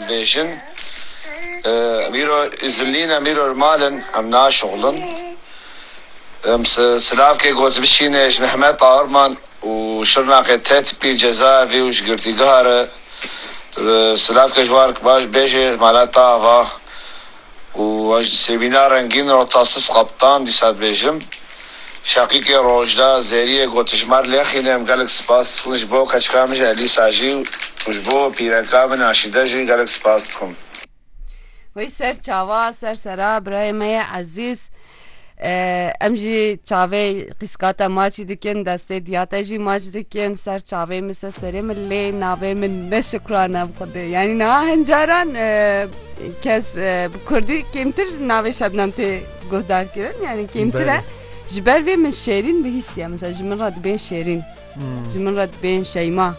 Dibêjin, Em îro îzin nîn, em îro li mal in, em naşixulin. Em silavkê got bişîne ji Mehmet Taarman û Şirnaqê tê tipî cezaevî û ji girtîgeha re silavkê ji wan baş bêjê mala te ava. Û ez ji Sevîna Rengîn Rotasis Kaptan dîsa dibêjim. Şeqîkê Rojda, Zerîyê Gotijmar Lexîn em gelek spas dikin ji bo keçika min ji Elîsa jî û ji bo pîreka min Aşîde jî gelek spas dikim. Wê ser çawa ser sera birayê me yê ezîz. Em jî çavê qîska te maçî dikin, destê diya te jî maç dikin, ser çavê min se serê min lê navê min ne şikrane bi xwedê. Yanî niha hin caran e, kes e, bi Kurdî kêmtir navê Şebnem tê guhdar kirin, yanî kêmtir e. Belê. Ji ber vê min şêrîn bihîstiye, mesela ji min re dibên şêrîn. Ji min re dibên Şeyma.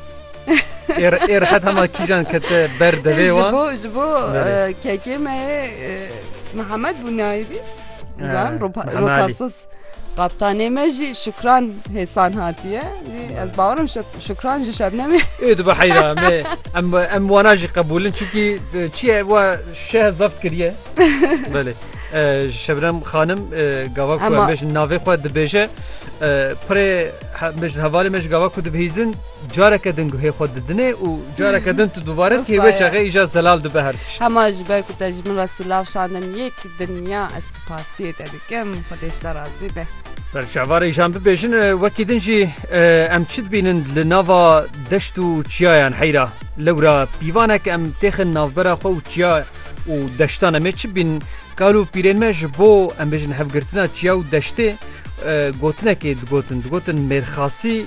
Êr êr heta ma kîjan kete ber devê wan. Ji bo ji bo kekê me Mihemed bû nayîbî. Ran rotasız. Kaptanê me jî şukran hêsan hatiye. Ez bawerim şukran ji şebnemê. Ê dibe heyra me em em wana jî qebûlin çikî çiye wa şeh zeft kiriye. Belê. Şebnem xanim gava ku em bêjin navê xwe dibêje pirê Hevalê me ji gava ku dibihîzin careke din guhê xwe didine û careke din tu dubare tê wê çaxê îja zelal dibe her tişt. Hema ji ber ku te ji min re silav şandin yek dinya ez spasiyê te dikim Xwedê ji te razî be. Ser çavarê îjan bibêjin wekî din jî em çi dibînin li nava deşt û çiyayan heyra lewra pîvanek em têxin navbera xwe û çiya û deştan em ê çi bînin Kal û pîrên me ji bo em bêjin hevgirtina çiya û deştê gotinekê digotin. Digotin mêrxasî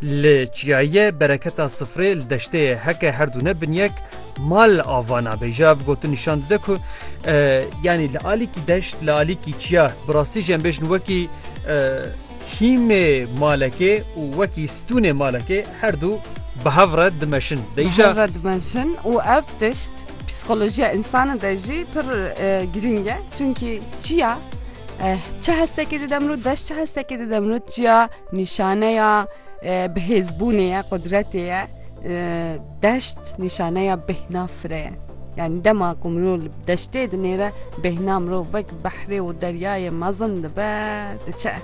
li çiyayê ye, bereketa sifrê li deştê ye. Heke herdu ne bin yek mal ava nabe. Ji ev gotin nîşan dide ku yanî li alîkî deşt li alîkî çiya bi rastî jî em bêjin wekî Hîmê malekê û wekî stûnê malekê her dû bi hev re dimeşin. Bi hev re dimeşin û ev tişt psîkolojiya însanê de jî pir girîng e. Çimkî çiya çi hestekê dide mirov, deş çi hestekê dide mirov, çiya nîşaneya bihêzbûnê ye, qudretê ye. Deşt nîşaneya bêhna firê ye. Yanî dema ku mirov li deştê dinêre bêhna mirov wek. Behrê û deryayê mezin dibe, diçe.